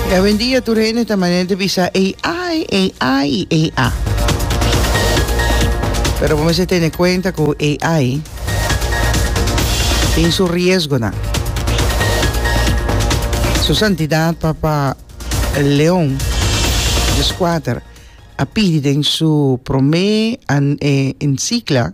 E awendia tur hende ta manera di bisa AI, AI y AI. Pero bo mester tene cuenta cu AI tin su riesgonan. Su santidad Papa Leon di Squater a pidi den su prome encicla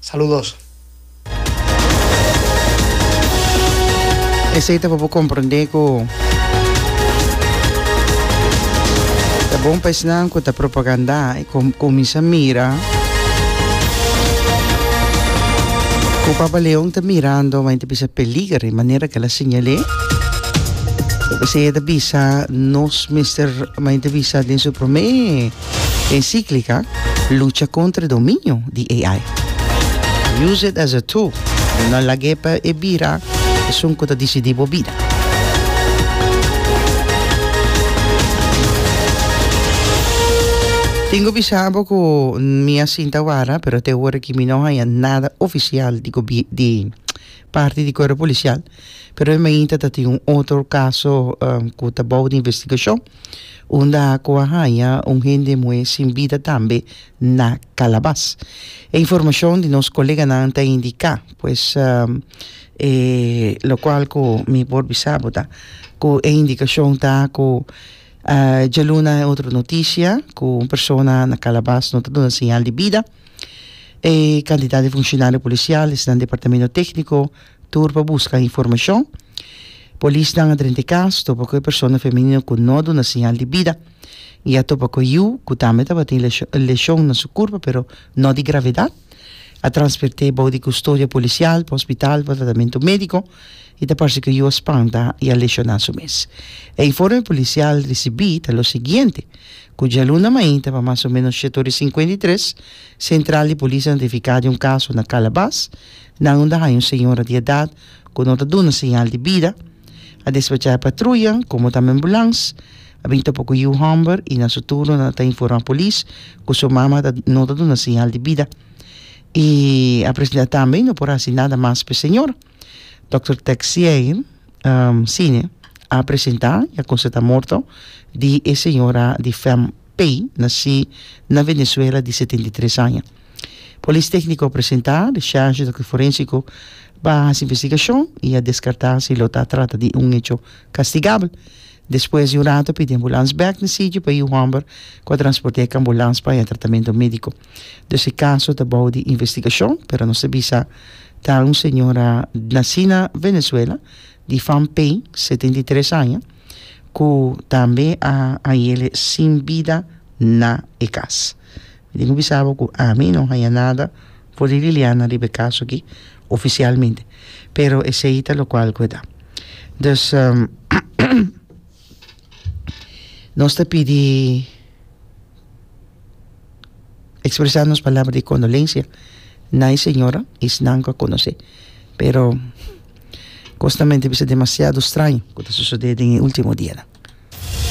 Saludos. Esey ta pa bo comprende cu ta bon pa esnan cu ta propaganda y cominsa mira cu Papa Leon ta mirando ma e ta bisa peliger y manera cu el a siñal'e esey e ta bisa nos mester ma e ta bisa den su prome. Encíclica Lucha contra e dominio di AI. Use it as a tool, no lag'é pa e bira esun cu ta dicidí bo bida. Tengo bisa bo cu mi a sinta wara, pero te ora aki mi no haña nada oficial di gobi, di parti di Cuerpo Policial, pero e mainta tatin un otro caso cu ta bou di investigacion. unda ku a haña un hende muhé sin bida tambe na Kalabas. E informashon di nos koleganan ta indiká, pues, e lokual ku mi por bisa bo ta ku e indikashon ta ku djaluna e otro notisia ku un persona na Kalabas no ta duna señal di bida. E kantidat di funshionario polisial esnan departamento tékniko. Tur pa buska informashon. Polisnan a drenta e kas, topa ku e persona femenino ku no a duna siñal di bida i a topa ku e yu, ku tambe tabatin leshon leshon na su kurpa pero no di gravedat. A transferté bou di kustodia polisial pa hospital pa tratamentu médiko i ta parse ku e yu a spanta i a leshoná su mes. E informe polisial risibí ta lo siguiente, ku djaluna mainta pa mas o ménos shete ora i sinkuenta i tres, sentral di polis a notifiká di un kaso na Kalabas, Nan unda haña un señora di edat ku no ta duna señal di bida, a despachá e patruya, komo tambe ambulans, a bin topa ku yu hòmber i na su turno nan a ta informá polis ku su mama ta no ta duna señal di bida i a presentá tambe no por hasi nada mas pa e señora. Dòkter Texier Cine a presentá i a konstatá morto di e señora di fèm Pei, nasí na Venezuela, di setenta i tres aña. Polis tékniko presentá di sérgento ku forensiko ba hasi investigashon i a deskartá si lo ta trata di un hecho kastigabel. Despues di un ratu pidi ambulans bèk na sitio pa yu hòmber ku a transport'é e kambulans pa haña tratamentu médiko. Dus e kaso ta bou di investigashon pero nos ta bisa ta un señora nasí na Venezuela di Van Pijn, setenta i tres aña, ku tambe a hañ'é sin bida na e kas. Mi tin cu bisa bo cu ami no haya nada for di Liliana riba e caso aki, oficialmente, pero esey ta locual cu e ta. Dus nos ta pidi expresa nos palabra di condolencia na e señora y esnan cu a conoce, pero cosnamente bisa demasiado straño cu ta sucede den e ultimo dianan.